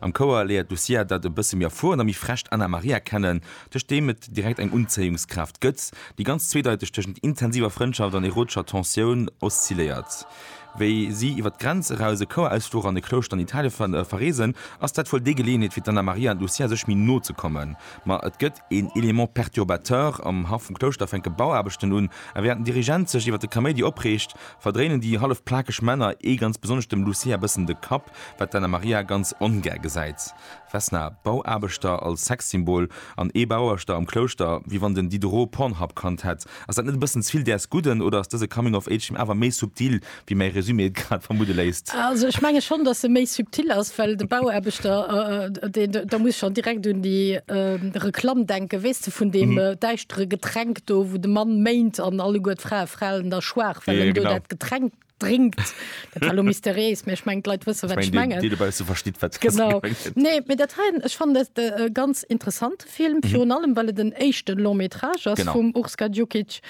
Am Chouer léiert d'Lucia dat e bësse méi erfuerent a méi frescht Anna Maria kennen, duerch deem et direkt eng Unzéiungskraaft gëtt, déi ganz zweedeiteg tëschent intensiver Frëndschaft an erotescher Tensioun oszilléiert. Wéi si iwwer d'Grenz eraus, e Chouerausfluch an e Klouschter an Italien verreesen, ass dat wuel déi Geleeënheet fir d'Anna Maria an d'Lucia sech méi no ze kommen. Ma et gëtt. een élément perturbateur am Haff vum Klouschter fänke Bauaarbechten un, a während den Dirigent sech iwwert de Kaméidi opreegt, verdréinen déi hallef plakeg Männer, ee ganz besonnesch dem Lucia, bëssen de Kapp, wat d'Anna Maria ganz ongär gesäit. Vesna, Bauaarbechter als Sexsymbol an ee Bauaarbechter am Klouschter, wéi wann den Diderot Pornhub kannt hätt. Ass dat net e bëssen zevill däers Gudden, oder ass dëse Coming of Age-Film awer méi subtil wéi mäi Resumé et grad vermudde léisst. Also ech menge schonn, datt e méi subtil ass, well de Bauaarbechter, deen, da muss ech schonn direkt un déi Reklamm denken, weess de, vun deem däischtere Getränk do, wou de Mann méint an alleguer d'Frae falen da schwaach, well en do dat Getränk drénkt. Dat war elo mysteriéis, mä ech mengen, d'Leit wësse, wat ech mengen. Déi dobausse verstitt, wat ech mengen. Genau. Nee, mä dat hei, ech fannen dat ganz interessant. Film, virun allem well et en éischte Long métrage ass vum Urs Gadjukic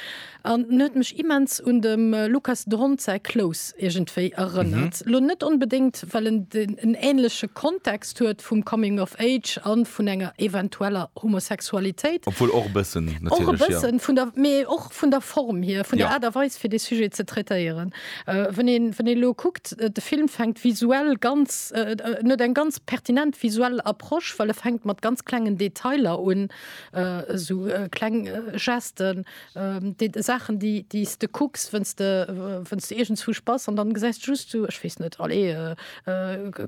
an en huet mech immens un dem Lukas Dhont säi Close iergendwéi erënnert. Lo net onbedéngt well en en änleche Kontext huet vum Coming of Age a vun enger eventueller Homosexualitéit, obwuel och e bëssen natierlech, jo, mee och vun der Form hier, vun der Aart a Weis fir dee Sujet ze traitéieren. Wann een wann een elo kuckt, de Film fänkt visuell ganz, en huet eng ganz pertinent visuell Approche, well e fänkt mat ganz klengen Detailer un, esou kleng Gesten, Saachen déi déi s de kucks, wann s de wann s de iergendswou bass an dann gesäis de just esou, ech weess net, allez,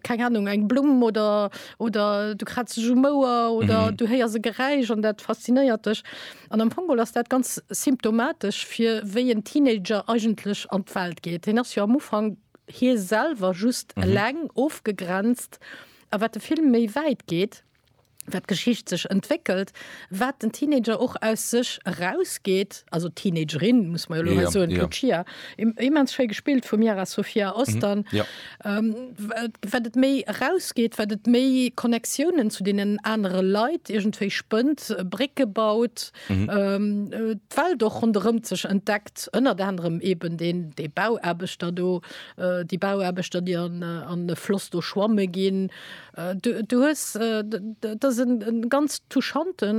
keng Ahnung, eng Blumm oder oder du kratzt dech um Ouer oder du héiers e Geräisch an dat faszinéiert dech. An am Fong ass dat ganz symptomatesch fir wéi en Teenager eigentlech an d'Welt geet. Hien ass jo am Ufank hie selwer, just eleng, ofgegrenzt. A wat de Film méi wäit geet, wat d'Geschicht sech entwéckelt, wat den Teenager och aus sech erausgeet, also d'Teenagerin, muss mer jo elo hei soen, d'Lucia, immens schéi gespillt vum Yara Sofia Ostan. Wat et méi erausgeet, wat et méi Connectiounen zu deenen anere Leit iergendwéi spënnt, Brécke baut, d'Welt och ronderëm sech entdeckt, ënnert anerem eben déi Bauaarbechter do, déi Bauaarbechter, déi an e Floss do schwamme ginn. Du hues, dat ass e ganz touchante.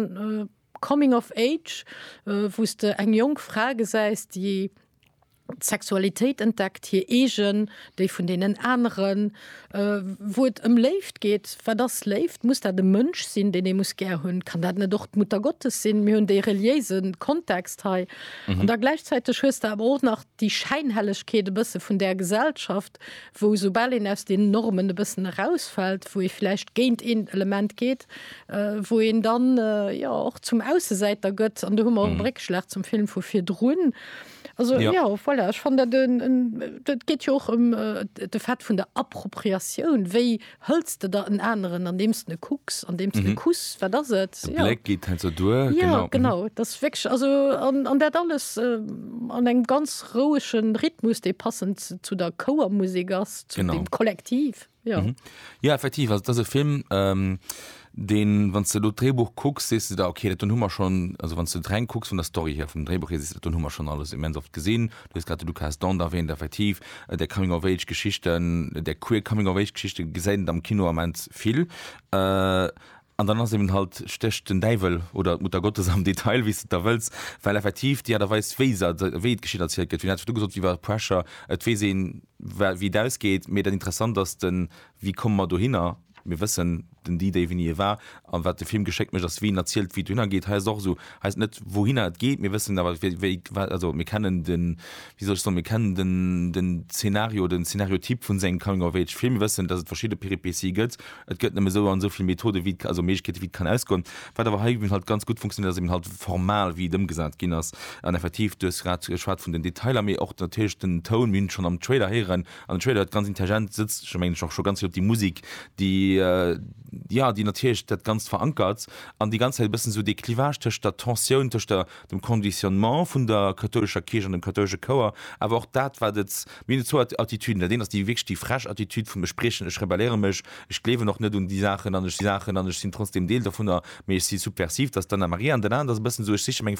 Coming of Age, wou s de eng jonk Fra gesäis, déi d'Sexualitéit entdeckt, hir eegen, déi vun deenen aneren, wou et ëm Léift geet. Wat ass Léift? Muss dat e Mënsch sinn, deen ee muss gär hunn? Kann dat net och d'Muttergottes sinn? Mir hunn dee reliéise Kontext hei. An da gläichzäiteg hues de awer och nach déi Schäinhellegkeet e bësse vun där Gesellschaft, wou esoubal een aus den Normen e bëssen erausfält, wou ee vläicht géint een Element geet, wou een dann, jo, och zum Aussesäiter gëtt. An do hu mer och e Réckschlag zum Film vu virdrun. Also, jo, voilà, ech fannen dat en, et geet jo och ëm de Fait vun der Appropriatioun, wéi Hëls de der en aneren, andeems de e kucks, andeems de e kuss? Wat ass et? De Bléck geet hei sou duer, genau. Jo, genau. Dat ass wierklech, also, an dat alles an engem ganz rouege Rhythmus, dee passend zu der Chouermusek ass, zu dem Kollektiv. Jo. Jo, effektiv, also, dat ass e Film. deen, wann s de elo d'Dréibuch kucks, sees de der, ok, dat, dunn hu mer schonn, also wann s de et reng kucks vun der Story hier, vum Dréibuch hier, sees de der, dunn hu mer schonn alles immens oft gesinn. Du hues grad de Lucas Dont erwähnt, effektiv, där Coming-of-age-Geschichten, där queer Coming-of-age-Geschichte gesäit et am Kino immens vill. An dann ass eben halt, stécht den Däiwel oder d'Muttergottes am Detail, wéi s de et da wëlls, well effektiv déi Aart a Weis, wéi se, wéi d'Geschicht erzielt gëtt, wéi hatt scho du gesot, iwwer Pressure, et weess een, wéi et ausgeet, mee dat Interessant ass den, wéi komme mer dohinner? Mir wëssen den D-Day wéini e war, an wat de Film geschéckt mécht ass wien erzielt wéi et dohinner geet. Hei ass et och esou, hei ass et net wouhinner et geet, mir wëssen awer wéi, wéi, wat, also mir kennen den, wéi soll ech soen, mir kennen den, den Zeenario, den Zeenariotyp vun sengem Coming of Age Film. Mir wëssen dass et verschidde Péripéties gëtt, et gëtt nëmme esou an esou vill Methoden wéi et, also Méiglechkeeten wéi et kann ausgoen. Wat awer hei eben halt ganz gutt funktionéiert ass eben halt formal wéi et ëmgesat ginn ass, an effektiv du hues grad geschwat vun den Detailer, mee och natierlech den Toun, mir hunn et schonn am Trailer héieren, An den Trailer huet ganz intelligent sëtzt scho mengen ech och scho ganz vill op déi Musik, déi jo, déi natierlech dat Ganzt verankert an déi ganz Zäit e bëssen esou dee Clivage tëscht der Tensioun, tëscht der dem Conditionnement vun der kathoulescher Kierch an dem kathoulesche Chouer, awer och dat wat et, mir hunn zwou Attitüden, dat een ass déi wierklech déi frech Attitüd vum ech briechen, ech rebelléiere mech, ech gleewen och net un déi Saachen an ech si Saachen an ech sinn trotzdem Deel dovunner, mee ech si subversiv, dat ass d'Anna Maria an dat anert ass e bëssen esou ech siche meng